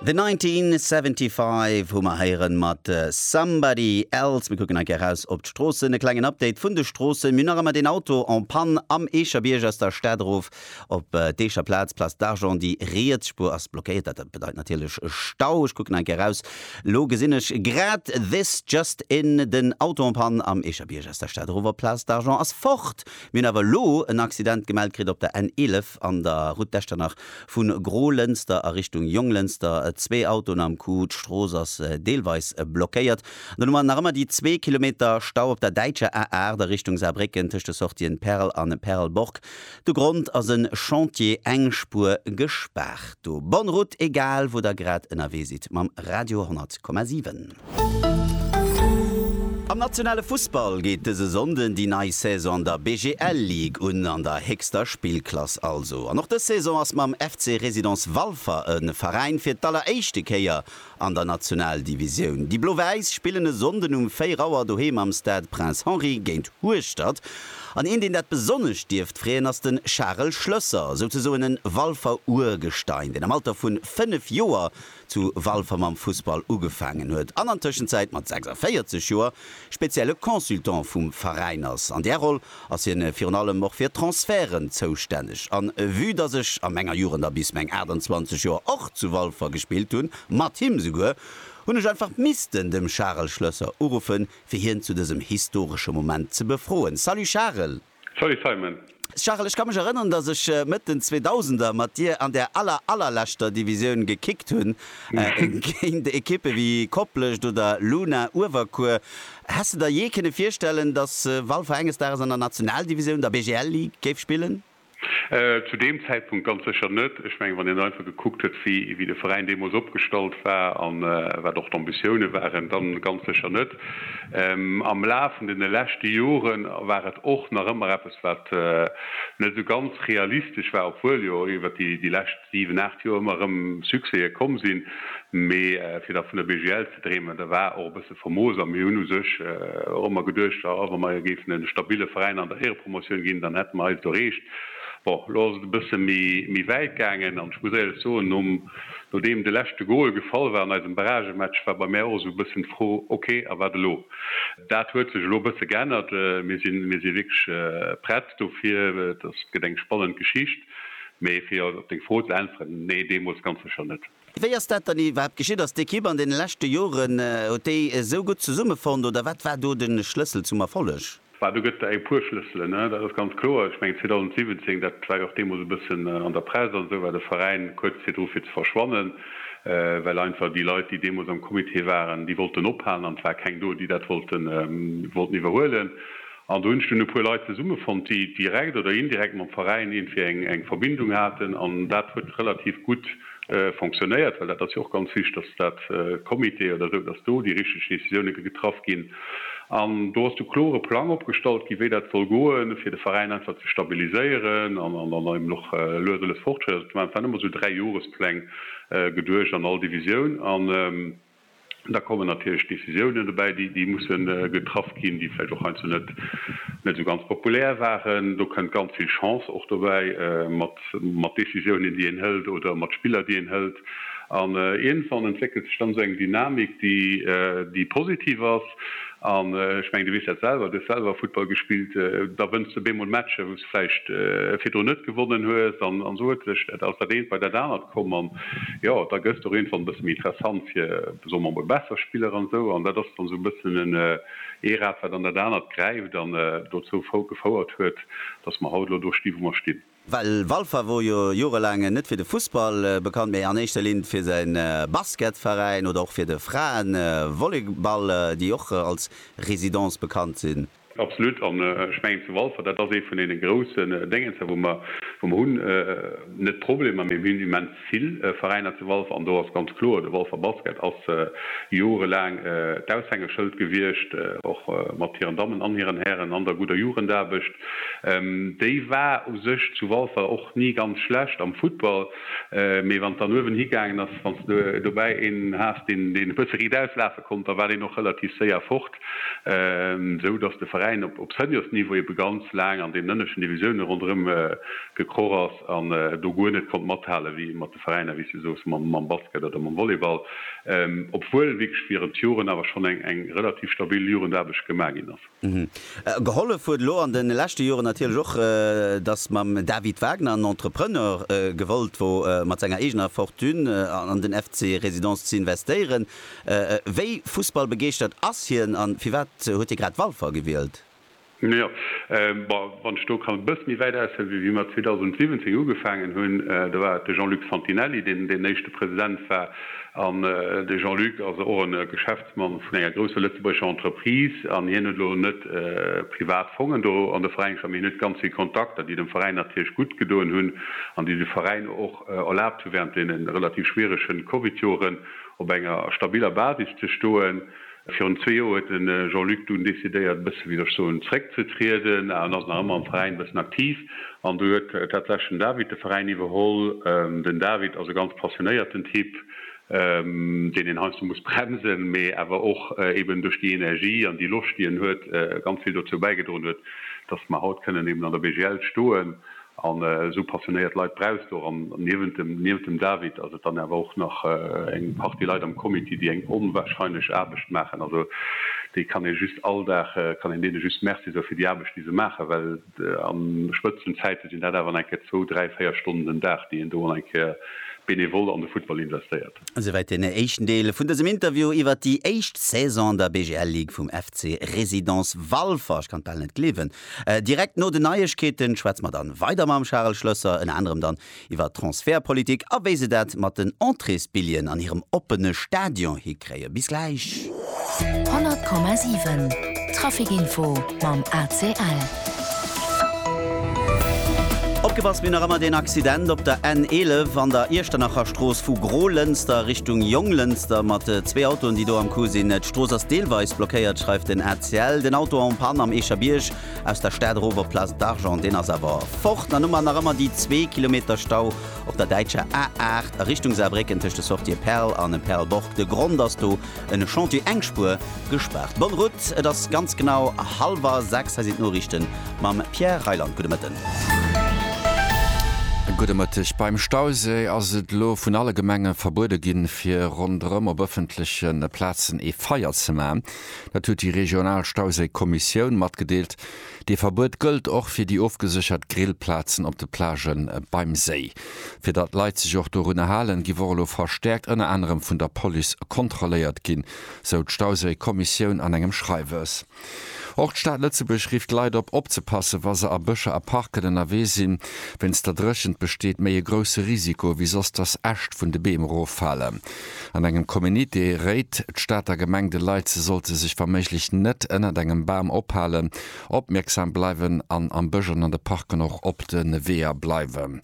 The 1975 hu mer héieren mat Somebody Else. Mir kucken hei gär raus op d'Stroossen. E klengen Update vun de Stroossen. Mir hunn nach ëmmer deen Auto en panne am Eecherbierg aus der Stad erof op d'Eecher Plaz, Place d'Argent. Déi riets Spuer ass blockéiert. Dat bedeit natierlech e Stau. Ech kucken hei gär raus. Elo gesinn ech grad this just in, den Auto en panne am Eecherbierg aus der Stad erof op d'Place d'Argent ass fort. Mir hunn awer elo en Accident gemellt kritt op der N11. an der Route d'Echternach vu Gro-Lënster a Richtung Jonglënster zwee Autoen am Coup, d'Strooss ass deelweis blockéiert. Dann hu mer nach ëmmer déi zwee Kilometer Stau op der däitscher A 8 a Richtung Saarbrécken tëscht de Sortien Perl an Perlborg. De Grond ass e Chantier, eng Spuer gespaart do. Bonne route egal wou der grad ënnerwee sidd mam Radio 100,7. Am nationale Fussball geet dëse Sonnden déi nei Saison an der BGL Ligue un, an der héchster Spillklass also. An och dës Saison ass mam FC Résidence Walfer e Veräin fir d'alleréischte Kéier an der Nationaldivisioun. Déi Blo-Wäiss spillen e Sonnden um 4 Auer doheem am Stade Prince Henri géint Hueschtert. An een, deen dat besonnesch dierft freeën, ass de Charel Schlösser, souzesoen e Walfer Urgestein, deen am Alter vu 5 Joer zu Walfer mam Fussball ugefaangen huet an an Tëschenzäit mat 46 Joer spezielle Consultant vum Veräin ass. An där Roll ass hien virun allem och fir Transferten zoustänneg an vue dass ech a menger Jugend a bis meng 28 Joer och zu Walfer gespillt hunn, mat him souguer, hunn ech einfach missten dem Charel Schlösser uruffen fir hien zu dësem historesche Moment ze befroen. Salut Charel! Salut Simon! Charel, ech ka mech erënneren, dass ech Mëtt den Zweedausender mat dir an der aller allerleschter Divisioun gekickt hunn, géint Ekippe wéi Koplescht oder Luna Uewerkuer. Häss de der jee kënne virstellen, dass Walfer enges Dages an der Nationaldivisioun, der BGL Ligue, géif spillen? Zu deem Zäitpunkt ganz sécher net. Ech mengen, wann een einfach gekuckt huet, wéi de Veräin deemools opgestallt war a wat och d'Ambitioune waren, dann ganz sécher net. Am Laf vun deene leschte Jore war et och nach ëmmer eppes, wat net esou ganz realistesch war, obwuel jo iwwer déi lescht siwen, aacht Joer ëmmer erëm Succèse komm sinn. Mee fir da vun der BGL ze dreemen, da war och e bësse famoos. A mir hunn u sech och ëmmer geduecht, jo, wa mer géifen e stabille Veräin an der Éierepromotioun ginn, dann hätte mer eist erreecht. Bon, elo ass et e bësse méi wäit gaangen an ech muss éierlech soen, nom. Nodeem de leschte Goal gefall war an eisem Barragematch, war bei mär och esou e bëssen d'Fro, ok, a wat elo? Dat huet sech elo e bësse geännert. Mir sinn, mir si wierklech prett dofir. Et ass, et gëtt eng spannend Geschicht. Mee fir op deng Fro ze äntweren, Nee, deemools ganz sécher net. Wéi ass dat dann iwwerhaapt geschitt? Ass d'Ekipp an deene leschte Joren, huet déi esou gutt zesummefonnt oder wat war do de Schlëssel zum Erfolleg? Bah, do gëtt et eng puer Schlësselen, dat ass ganz kloer. Ech mengen 2017, dat war jo och deemools e bëssen an der Press an esou, war de Veräin kuerz virdru fir ze verschwannen, well einfach déi Leit, déi deemools am Comité waren, déi wollten ophalen an et war keng do, déi dat wollten iwwerhuelen. An do hunn ech dunn e puer Leit zesummefonnt, déi direkt oder indirekt mam Veräin iergendwéi eng Verbindung haten an dat huet relativ gutt fonctionnéiert, well dat ass jo och ganz wichtig, dass dat Comité oder esou, dass do déi richtig Décisionen getraff ginn. An do ass de klore Plang opgestallt ginn, wéi dat soll goen, fir de Veräin einfach ze stabiliséieren an eben och lues a lues Fortschritt ze maachen. Et waren ëmmer esou Dräijohrespläng geduecht an all Divisioun. Da kommen natierlech Décisiounen dobäi, déi musse getraff ginn, déi vläicht och heiansdo net esou ganz populär waren. Do kënnt ganz vill Chance och dobäi, mat Décisiounen, déi een hëlt, oder mat Spiller, déi een hëlt. An iergendwann entwéckelt sech dann esou eng Dynamik, déi positiv ass. An ech mengen, du weess dat selwer, du hues selwer Futtball gespillt, da wënns du op eemol Matcher, wou vläicht virdrun net gewonnen hues an esou huet sech dat aus dat eent bei dat anert komm an jo da gëss de och iergendwann e bësse méi interessant fir soe mer emol besser Spiller an esou an dat ass dann esou e bëssen en ee Rad wat an dat anert gräift an dozou gefouert huet, datt mer haut elo do sti wou mer stinn. Well Walfer wor jo jorelaang net fir de Fussball bekannt, mee an éischter Linn fir säi Basketveräin oder och fir de Fraevolleyball, déi och als Résidence bekannt sinn. Absolut. An ech mengen, zu Walfer, dat ass ee vun deene groussen Déngens hei, wou mer, wou mer hunn, net Problemer, mee mir hunn immens vill Veräiner zu Walfer. An do ass ganz kloer, de Walfer Basket ass jorelaang d'Aushängeschëld gewiescht, och mat hiren Dammen an hiren Hären an der gudder Jugendaarbecht. Déi war u sech zu Walfer och ni ganz schlecht am Football, mee wann et dann uewen higaangen ass, wann s de dobäi een has, deen, deen e bësse riit auslafe konnt, da war deen och relativ séier fort. esou dass de Veräin op Seniors-Niveau ebe ganz laang an deenen ënneschten Divisioune ronderëm gekroch ass an do guer net konnt mathale wéi mat de Veräiner, wéi s de soos, mam Basket oder mam Volleyball, obwuel wierklech virun d'Joren awer schonn eng relativ stabil Jugendaarbecht gemaach ginn ass. Gehollef huet elo an de leschte Joren natierlech och, dass mam David Wagner en Entrepreneur gewollt wor, mat senger eegener Fortune an den FC Résidence z'investéieren. Wéi fussballbegeeschtert ass hien an firwat huet hie grad Walfer gewielt? Jo, wann ech do kann e bësse méi wäit aushuelen, wéi wéi mer 2017 ugefaangen hunn, do war et de Jean-Luc Santinelli, deen deen éischte President war. An de Jean-Luc ass och e Geschäftsmann vun enger grousser lëtzebuergescher Entreprise an hien huet elo net privat Fongen do an de Veräin gestallt, mee hien huet ganz vill Kontakter, déi dem Veräin natierlech gutt gedoen hunn an déi de Veräin och erlaabt hu während deene relativ schwierege Covidjoren, op enger stabiller Basis ze stoen. Virun zwee Joer huet de Jean-Luc dunn decidéiert, e bësse wéi ech soen, zréckzetrieden an ass nach ëmmer am Veräin e bëssen aktiv. An du huet tatsächlech den David de Veräin iwwerholl. Den David ass e ganz passionéierten Typ, deen een heiansdo muss bremsen, mee awer och eben duerch déi Energie an déi Loscht, déi en huet, ganz vill dozou bäigedroen huet, dass mer haut kënnen eben an der BGL stoen. An esou passionéiert Leit brauchs du och. An niewent dem David ass et dann awer och nach eng Partie Leit am Comité, déi eng onwahrscheinlech Aarbecht maachen. Also déi kann ee just all Dag, kann een deene just Merci soe fir déi Aarbecht, déi se maachen, well a Spëtzenzäite sinn dat awer nach eng Kéier zwou, dräi, véier Stonnen den Dag, déi een do eng Kéier benevol an de Futtball investéiert. Esouwäit den éischten Deel vun dësem Interview iwwert déi éischt Saison an der BGL-Ligue vum FC Résidence Walfer. Ech kann et bal net gleewen, Direkt no den Neiegkeeten schwätze mer dann weider mam Charel Schlösser, ënner anerem dann iwwer Transfertpolitik a wéi se dat mat den Entréesbilljen an hirem oppene Stadion hikréien. Bis gläich. 100,7 Trafic Info mam ACL. Opgepasst, mir hunn nach ëmmer deen Accident op der N11 an der Iechternacher Strooss vu Gro-Lënster Richtung Jonglënster mat zwee Autoen, déi do am Coup sinn. D'Strooss ass deelweis blockéiert, schreift den. Ciel, den Auto en Panne am Eecherbierg, aus der Stad erof op Place d'Argent, deen ass awer fort. An Noumer nach ëmmer déi zwee Kilometer Stau op der däitscher A8 a Richtung Saarbrécken tëscht de Sortië Perl an Perlborg. De Grond ass do en Chantier, eng Spuer gespaart. Bonne route, et ass ganz genau hallwer sechs. Hei sinn d'Noriichten mam Pierre Reyland. Gudde Mëtten. Gudde Mëtteg. Beim Stauséi ass et elo vun alle Gemenge verbuede ginn, fir ronderëm op ëffentleche Plazen ee Feier ze maachen. Dat huet déi regional Stauséikommissioun matgedeelt. Dee Verbuet gëllt och fir déi ofgeséchert Grillplazen op de Plagë beim Séi. Fir datt Leit sech och dorunner halen, giff och elo verstäerkt ënner anerem vun der Police kontrolléiert ginn, sou d'Stauséikommissioun an engem Schreiwes. Och d'Stad Lëtzebuerg rifft d'Leit op, opzepassen, wa se a Bëscher a Parken ënnerwee sinn. Wéinst der Dréchent besteet méi e grousse Risiko ewéi soss, datt Äscht vun de Beem eroffalen. An engem Communiqué réit d'Stater Gemeng de Leit, se sollte sech wa méiglech net ënnert engem Bam ophalen, opmierksam bleiwen an am Bësch an an de Parken och op de Weeër bleiwen.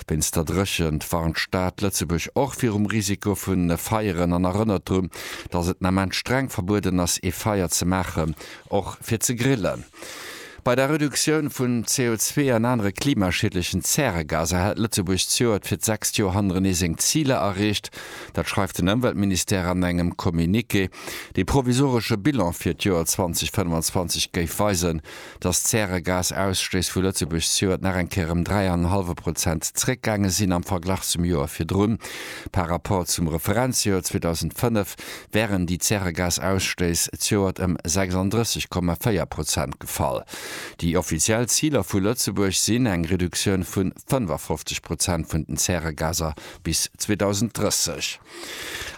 Wéinst der Dréchent warnt d'Stad Lëtzebuerg och virum Risiko vu Feieren an erënnert drun, datt et den Ament streng verbueden ass, ee Feier ze maachen, och fir ze grillen. Bei der Reduktioun vun CO2 an anere klimaschiedlechen Zäregaser hält Lëtzebuerg zejoert fir d'sechst Joer hannerenee seng Ziler erreecht. Dat schreift den Ëmweltministère an engem Communiqué. Dee provisoresche Bilan fir d'Joer 2025 géif weisen, datt d'Zäregasausstéiss vu Lëtzebuerg zejoert nach eng Kéier ëm dräi an en hallwe Prozent zeréckgaange sinn am Verglach zum Joer virdrun. Par Rapport zum Referenzjoer 2005 wären déi Zäregasausstëiss zioert ëm 36,4 Prozent gefall. Déi offiziell Ziler vu Lëtzebuerg sinn eng Reduktioun vu 55 Prozent vun den Zäregaser bis 2030.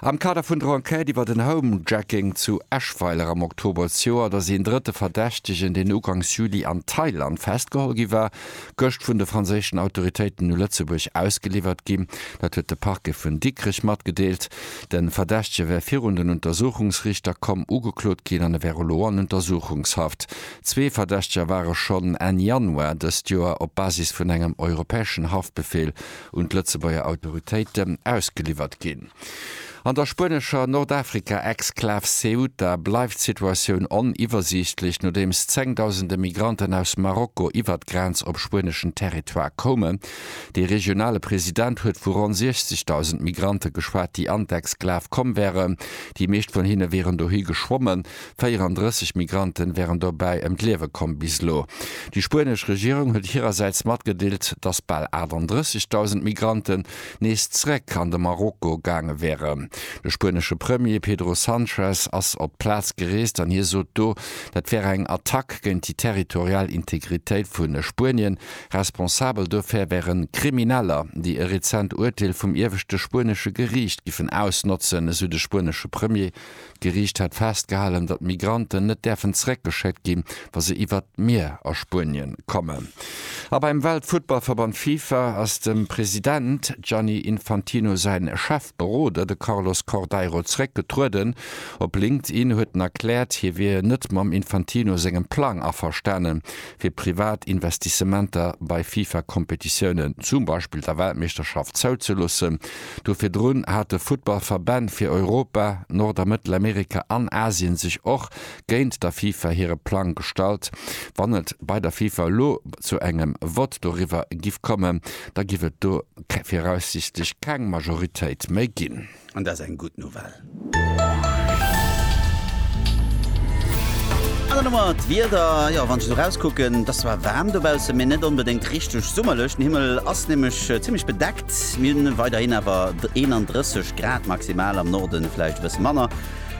Am Kader vun der Enquête iwwer den Homejacking zu Eschweiler am Oktober zioert ass een drëtte Verdächtegen, deen ugangs Juli an Thailand festgeholl gi war, gëscht vun de franséischen Autoritéiten u Lëtzebuerg ausgeliwwert ginn. Dat huet de Parquet vun Dikrech matgedeelt. De Verdächtege wär virun den Untersuchungsrichter komm, ugeklot ginn an e wär elo an Untersuchungshaft. Zwee Verdächteger ware schonn Enn Januar dëst Joer op Basis vun engem europäeschen Haftbefeel un d'Lëtzebuerger Autoritéite ausgeliwwert ginn. An der spuenescher Nordafrika-Exklav Ceuta bleift d'Situatioun oniwwersiichtlech, nodeems zengdausende Migranten aus Marokko iwwer d'Grenz op spueneschen Territoire koumen. Dee regionale President huet vu ronn 60.000 Migrante geschwat, déi Antex-Sklave komm wären. Déi meescht vun hinne wieren dohi geschwommen. 34 Migrante wären dobäi ëm d'Liewe komm bis elo. Déi spuenesch Regierung huet hirersäits matgedeelt, datt bal 38.000 Migranten nees zeréck an de Marokko gaange wären. De spuenesche Premier Pedro Sanchez ass op d'Plaz gereest an hie sot do, dat wär eng Attack géint déi territorial Integritéit vu Spuenien. Responsabel dofir wären Krimineller, déi e rezent Urteel vum ieweschte spuenesche Geriicht giffen ausnotzen, esou de spuenesche Premier. D'Geriicht hätt festgehalen, datt Migranten net däerfen zeréckgeschéckt ginn, wa se iwwert d'Mier a Spuenien kommen. A beim Weltfuttballverband Fifa ass dem President Gianni Infantino säin Chefberoder, de Carlos Cordeiro zeréck getrueden. Op LinkedIn huet en erkläert, hie wier net mam Infantino sengem Plang averstanen, fir privat Investissementer bei FIFA-Kompetitiounen, zum Beispill der Weltmeeschterschaft, zouzeloossen. Do virdrun hate Futtballverbänn fir Europa, Nord a Mëttelamerika an Asien sech och géint der FIFA hire Plang gestallt. Wann et bei der FIFA elo zu engem Vott doriwwer giff kommen, da giff et do viraussiichtlech keng Majoritéit méi ginn. An dat ass eng gutt Nouvelle. An dann hu mer d'Wieder. Jo, wann ech esou erauskucken, et ass zwar waarm dobaussen, mee net onbedéngt richteg summerlech. Den Himmel ass nämlech zimmlech bedeckt. Mir hunn weiderhin awer 31 Grad maximal, am Norden vläicht e bësse manner.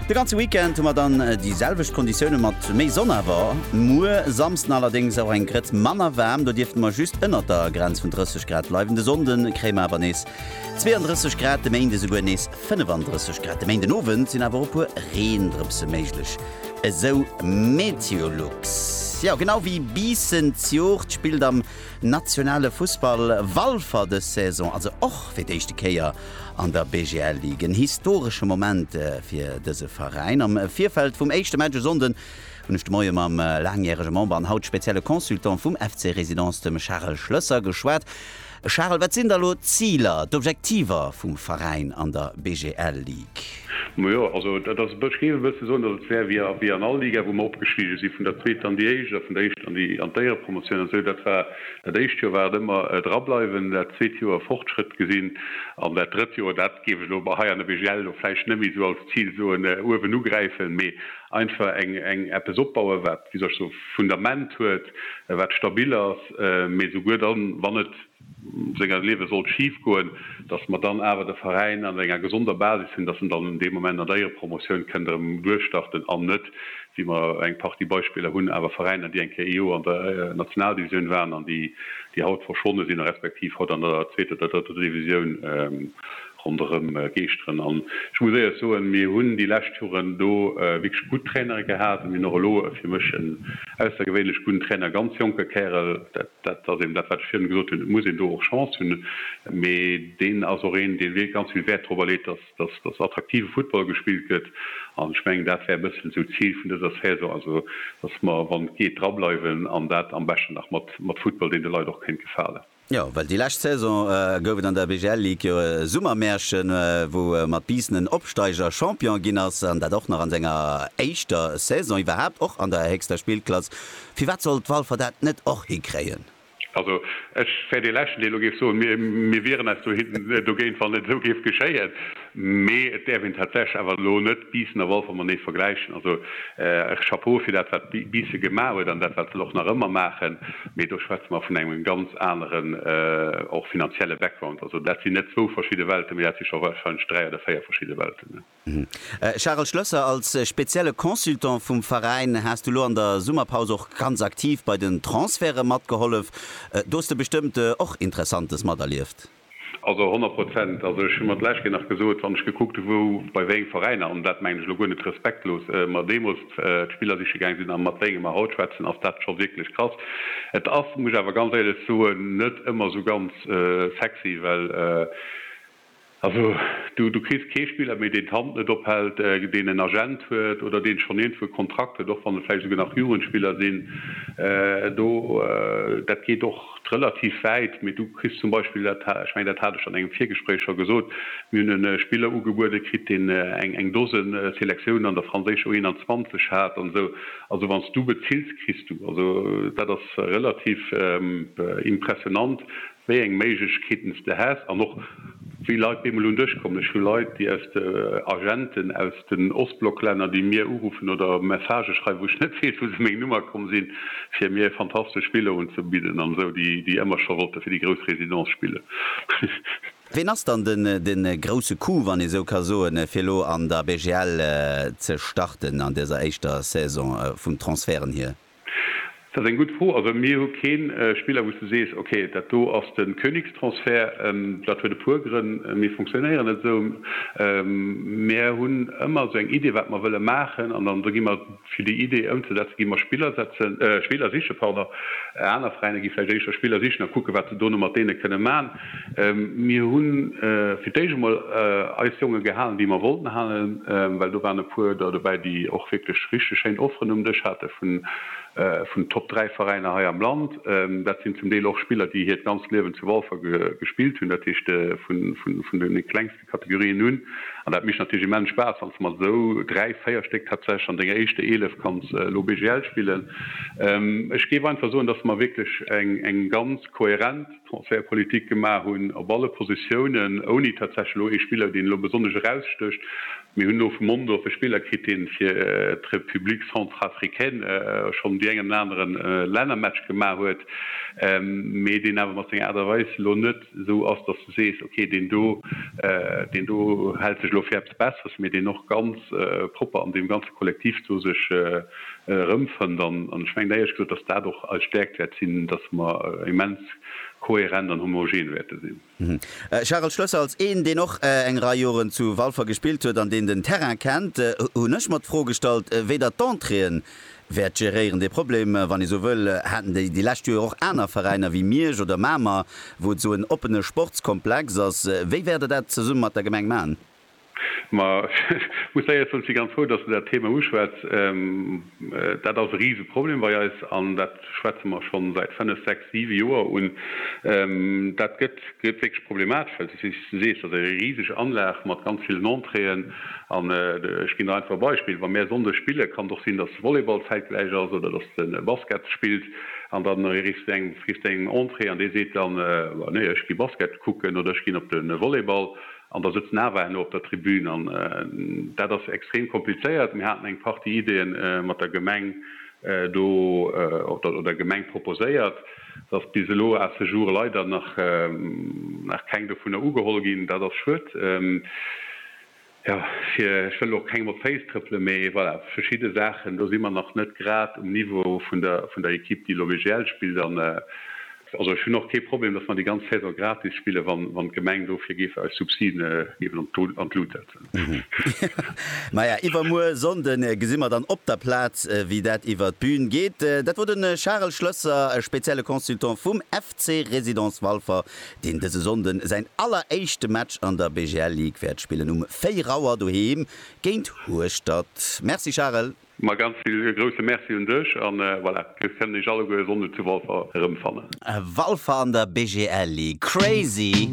De ganze Weekend hu mer dann déi selwecht Konditiounen mat méi Sonn. Awer muer, Samsden, allerdéngs och eng Grëtz manner waarm. Do dierfte mer just ënnert der Grenz vun 30 Grad bleiwen. De Sonnde kréie mer awer nees 32 Grad de Méinde, souguer nees 35 Grad de Méinden Owend, sinn awer och e puer Reendrëpse méiglech, esou Meteolux. Jo, genau wéi bissen d'Jugd spillt am nationale Fussball Walfer dës Saison also och fir d'éischte Kéier an der BGL-Ligue. En historesche Moment fir dëse Veräin. Am Virfeld vum éischte Match e Sonnden hunn ech de Moie mam laangjärege Member an haut spezielle Consultant vum FC Résidence, dem Charel Schlësser, geschwat. Charel, wat sinn da elo d'Ziler, d'Objektiver vum Veräin an der BGL Ligue? Majo, also dat ass e bësch, géif e bësse soen, dass et wär wéi an all Liga, wou mer opgestige si vun der zweeter an déi éischt a vun der éischten an d'Éierepromotioun an esou. Dat war, dat éischt Joer war et ëmmer drableiwen, dat zweet Joer Fortschrëtt gesinn an dat drëtt Joer, dat géif ech elo hei an der BGL elo vläicht net méi esou als Zil soen, uewen ugräifen, mee einfach eng, eng, eppes opbauen, wat, wéi soll ech soen, Fundament huet, wat stabil ass. passt, mee souguer dann, wann et seng an Liewe sollt schif goen, datt mer dann awer de Veräin an enger gesonder Basis hunn, datt en dann un deem Moment an der Éierempromotioun kënnt erëm duerchstarten an net, wéi mer eng Partie Beispiller hunn, awer Veräiner, déi eng Kéier ee Joer an der Nationaldivisioun waren an déi haut verschwonne sinn, respektiv haut an der zweeter oder drëtter Divisioun Ronderëm geeschteren. An ech muss éierch soen, mir hunn déi lescht Joren do wierklech gutt Trainere gehat. An mir hunn och elo e fir mech en aussergewéinlech gudden Trainer, e ganz jonke Kärel. Dat ass eben dat, wat ech virun gesot hunn, et muss een do och Chance hunn. Mee deen ass och een, dee wierklech ganz vill Wäert dorobber leet, dass, dass attraktive Football gespillt gëtt. An ech mengen, dat wär e bëssen esou d'Zil vun dëser Saison. Also, dass mer, wann et geet, drableiwen an dat am beschten nach mat, mat Football, deen de Leit och kéint gefalen. Jo, well déi lescht Saison gouf et an der BGL Ligue jo e Summermärchen, wou mat Biissen en Opsteiger Champion ginn ass, an dat och nach an senger éischter Saison iwwerhaapt, och an der héchster Spillklass. Firwat sollt Walfer dat net och hikréien? Also, ech wär dee Leschten, deen elo géif soen, mir wieren eis dogéint, wann et esou géif geschéien. Mee et däerf een tatsächlech awer elo net Biissen a Wolfer matenee vergläichen. Also Chapeau fir dat, wat Biisse gemaach huet an dat, wat se och nach ëmmer maachen. Mee do schwätze mer vun engem ganz aneren, och finanzielle Background. Also dat sinn net zwou verschidde Welten, mee dat si scho warscheinlech dräi oder véier verschidde Welten. Charel Schlösser, Als spezielle Consultant vum Veräin has du elo an der Summerpaus och ganz aktiv bei den Transferte matgehollef. Do hues de bestëmmt och Interessantes materlieft? Also honnert Prozent. Also ech hu mer d'lescht Kéier nach gesot, wann ech gekuckt hu wou, bei wéi eng Veräiner, an dat mengen ech elo guer net respektlos, mer deemools d'Spiller siche gaange sinn a mat wéinge mer haut schwätzen, ass dat scho wierklech krass. Et ass, muss ech awer ganz éierlech soen, net ëmmer esou ganz sexy, well also du kriss kee Spiller méi, deen d'Hand net ophält, deen en Agent huet oder deen schonn iergendwou e Kontrakt huet, och wann et vläicht esouguer nach Jugendspiller sinn. Do, dat geet och. relativ wäit, mee du kriss zum Beispill, dat, ech mengen dat hat ech an engem Virgespréich scho gesot, mir hunn e Spiller ugebuede kritt, deen eng eng Dose Selektiounen an der franséischer U21 hat an esou. Also wann s du bezills, kriss du. Also dat ass relativ impressionant, wéi eng Méiglechkeeten s de häss an och wéi Leit bemol un dech kommen. Ech hu Leit, déi aus de Agenten aus. den Ostblocklänner, déi mir uruffen oder Messagë schreiwen, wou ech net weess, wou se meng Nummer komm sinn, fir mir e fantastesch Spill do unzebidden an esou, déi déi ëmmer scho wollte fir déi grouss Résidence spillen. Ween ass dann de grousse Coup, wann ee esou ka soen, fir elo an der BGL ze starten an dëser éischter Saison vun Transferten hier? Dat ass eng gutt Fro. Also mir hu keen Spiller wou s de sees, ok dat do ass de Königstransfert. Dat huet e puer Grënn. Mir fonctionnéieren net esou. Mir hunn ëmmer esou eng Idee wat mer wëlle maachen an dann gi mer, fir déi Idee ëmzesetzen, gi mer Spiller setzen, Spiller sichen, pardon. Aner Veräiner gi vläicht éischter Spiller sichen a kucken wat se dono mat deene kënne man. Mir hunn fir d'éischt emol eis Jongen gehalen, déi mer wollten halen, well do waren e puer der dobäi, déi och wierklech richteg schéin Offeren um Dësch haten vun Top 3 Veräiner hei am Land. Dat sinn zum Deel och Spiller, déi hiert ganzt Liewen zu Walfer gespillt hunn, dat heescht vun de klengste Kategorien un. An dat mécht natierlech immens Spaass, wann s de mat esou dräi, véier Stéck tatsächlech an denger éischte Eelef kanns elo BGL spillen. Ech géif einfach soen, dass mer wierklech eng ganz kohärent. Transfertpolitik gemaach hunn op alle Positiounen, ouni tatsächlech elo ee Spiller, deen elo besonnesch erausstécht. Mir hunn elo vu Mondorf e Spiller kritt, dee fir d'République centrafricaine schonn déi eng an den anere Lännermatch gemaach huet, mee deen awer mat senger Aart a Weis elo net esou ass, dass du sees, ok, deen do, deen do hält sech elo fir eppes Besseres, mee deen och ganz propper an deem ganze Kollektiv do sech, erëmfënnt. An ech mengen éierlech gesot, datt dat och eis Stäerkt wäert sinn, datt mer immens kohärent an homogen wäerte sinn. Charel Schlösser, Als een, deen och eng Rei Joren zu Walfer gespillt huet an deen den Terrain kennt, hunn ech mer d'Fro gestallt, wéi Der d'Entréeën wäert geréieren. Dee Problem, wann ee sou wëll, haten déi lescht Joer och aner Veräiner wéi Miersch oder Mamer, wou et esou en oppene Sportskomplex ass. Wéi wäert Der dat zesumme mat der Gemeng maachen? Ma ech muss éiert soen, ech si ganz frou, datt de dat Thema uschwätz. Dat ass e Riseproblem bei eis an dat schwätze mer schonn säit fënnef, sechs, siwe Joer un. Dat gëtt wierklech problematesch, well du sees, dat ass eng riseg Anlag mat ganz villen Entréeën. An ech ginn der einfach e Beispill, Wa mir Sonndes spillen, kann et och sinn, datt de Volleyball zäitgläich ass oder datt de Basket spillt an da kriss de eng Entrée an dee seet dann, Nee, ech gi Basket kucken oder ech ginn op de Volleyball. An da sëtzt Nava herno op der Tribün. An dat ass extrem komplizéiert. Mir haten eng Partie Ideeë mat der Gemeng do, oder der Gemeng proposéiert. Et ass bis elo à ce jour leider nach keng dovunner ugeholl ginn. Dat ass schued. Jo, fir, ech wëll och kengem op d'Féiss trëppelen, mee voilà, verschidde Saachen, do si mer nach net grad um Niveau vun der Equipe, déi elo WGL spillt. An Also ech hunn och kee Problem, datt mer déi ganz Saison gratis spillen, wann d'Gemeng dofir géif eis Subsiden eben an d'Lut setzen. Maja, iwwermuer Sonnde gesi mer dann op der Plaz, wéi dat iwwer d'Bün geet. Dat wor de Charel Schlësser, spezielle Consultant vum FC Résidence Walfer, deen dëse Sonnde säin alleréischte Match an der BGL Ligue wäert spillen, um 4 Auer doheem géint Hueschtert. Merci Charel. Ma ganz vill e grousse Merci un dech an voilà, dir kënnt iech alleguer e Sonnde zu Walfer erëmfannen. Walfer an der BGL League, crazy!